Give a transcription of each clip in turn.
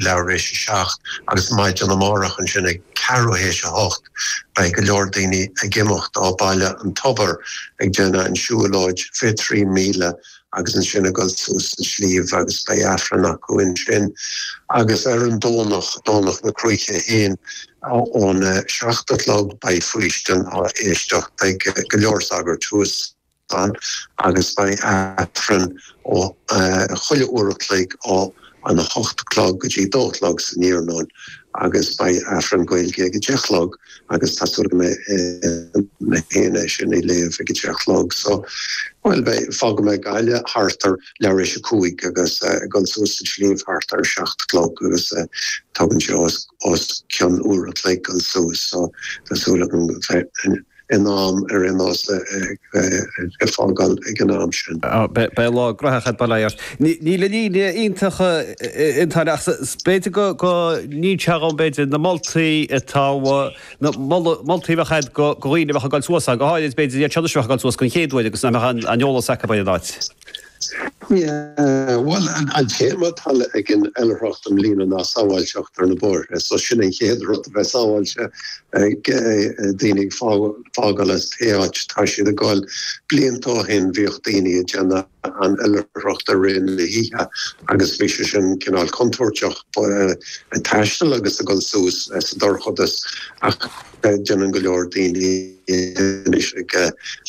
leath théis a seacht agus maidin amárach ansin ag ceathrú théis a hocht beidh go leor daoine ag imeacht ó Baile an Tobair ag déanamh an siúlóid 23 míle agus ansin ag dul suas an sliabh agus beidh Aifreann acu ansin agus ar an Domhnach, Domhnach na Cruaiche féin, ón a seacht a chlog beidh faoistin á éisteacht ag go leor sagairt thuas. fad agus beidh Aifreann chuile uair a chloig ó an 8 a chlog go dtí a dó a chlog san iarnóin agus beidh Aifreann Gaeilge ag a deich a chlog agus tá súil agam mé féin é sin a léamh ag a deich a chlog so bhuel beidh fágfaidh mé Gaillimh thart ar leath éis a cúig agus ag dul suas an sliabh thart ar a seacht a chlog agus tógann sé os cionn uair a chloig dul suas so tá súil agam go in am ar aon nós a fágáil ag an am sin. Beidh lá gnóthach ag baile ort. Níl an aimsir iontach ach b'fhéidir go níonn sé dhom b'fhéidir na moltaí atá na moltaí a bheadh agat go dhaoine a bheadh ag dul suas go háirid b'fhéidir iad seo a bheadh ag dul suas den chéad uair agus nach mbeadh aon eolas acu ar an áit. Bhuel, an téama atá ag an oilithreacht i mbliana ná sábháilteacht ar na bóithre, so sin an chéad rud, a bheith sábháilte, daoine ag fágáil as pé áit atá siad ag dul. Blianta ó shin bhíodh daoine ag déanamh an oilithreacht i rith na hoíche agus bhí sé sin cineál contúirteach, ag taisteal agus ag dul suas sa dorchadas ach, Déanann go leor daoine anois ag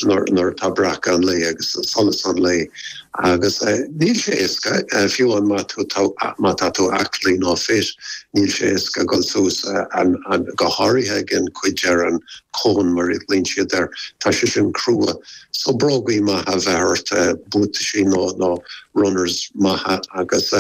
nuair atá breacadh an lae agus solas an lae agus níl sé éasca fiú amháin má tú má tá tú aclaí nó fit, níl sé éasca dul suas an go háirithe ag an cuid ar an cón mar a ghlaonn siad air, tá sé sin crua. So brógaí maithe a bheith ort, buataisí nó nó runners maithe agus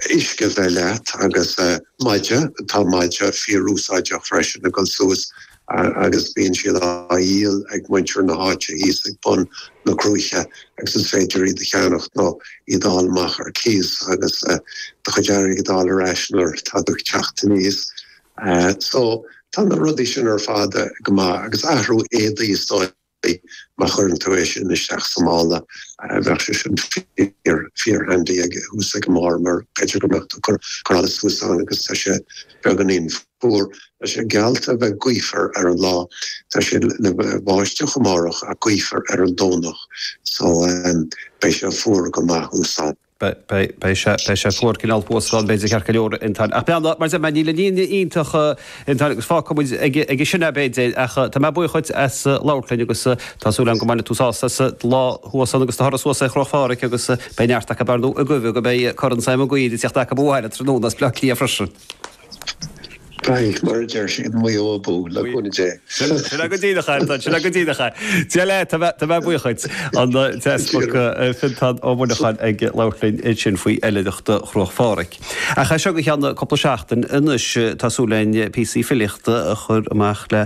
uisce a bheith leat agus. Maide, tá maide fíorúsáideach freisin ag dul suas agus bíonn siad á dhíol ag muintir na háite thíos ag bun na cruaiche agus is féidir iad a cheannacht nó iad a fháil amach ar cíos agus do chuid airgid a d'fháil ar ais nuair atá tú ag teacht anuas. So tá na rudaí sin ar fad go maith agus athrú éadaí is dóigh. Bhí. Má chuireann tú é sin isteach sa mála, bheadh sé sin fíor, fíor handy thuas ag an mbarr mar b'fhéidir go mbeadh tú ag cur allais thuas ann agus tá sé beagáinín fuar. Tá sé geallta a bheith gaofar ar an lá. Tá sé le bheith ag báisteach amárach ach gaofar ar an Domhnach. So, beidh sé fuar go maith thuas ann. Beidh sé fuar cineál fuascáil b'fhéidir ceart go leor a Fhionntáin ach beannacht mar sin níl aon ní iontach a Fhionntáin agus fágfaidh muid aige sin é b'fhéidir ach tá mé buíoch dhuit as labhairt linn agus tá súil agam go mbainfidh tú sásamh as do lá thuas ann agus do thuras suas ar Chruach Phádraig agus beidh neart acu ar ndóigh ag guí go mbeidh Corn Sam Mhig Uidhir ag tíocht acu abhaile tráthnóna as Bleá Cliath freisin. Beidh, mar a deir siad Maigh Eo abú, le cúnamh Dé. Sin é go díreach é, a Fhionntáin, sin é go díreach é. Dia leat, tá mé, tá mé buíoch dhuit. An t-easpag Fionntán Ó Muineacháin ag labhairt linn ansin faoi oilithreacht Chruach Phádraig. Ach as seo go cheann cúpla seachtain anois tá súil againn píosaí filíochta a chur amach le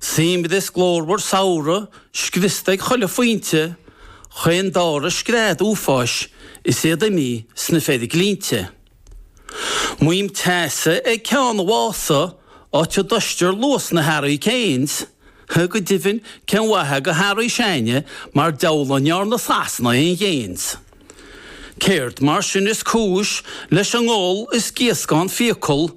Seamlais glórmhar samhradh scriosta ag chuile phointe chaon dara scread uafáis is iad imithe sna feiriglinnte. Maidhm teasa ag Ceann Mhása, áit a dtomhaistear luas na Harry Kanes. Go deimhin cén mhaith go Harry Shane mar deabhal a ndearna Sasana aon ghains. Céard mar sin is cúis leis an ngol is gíoscán fiacal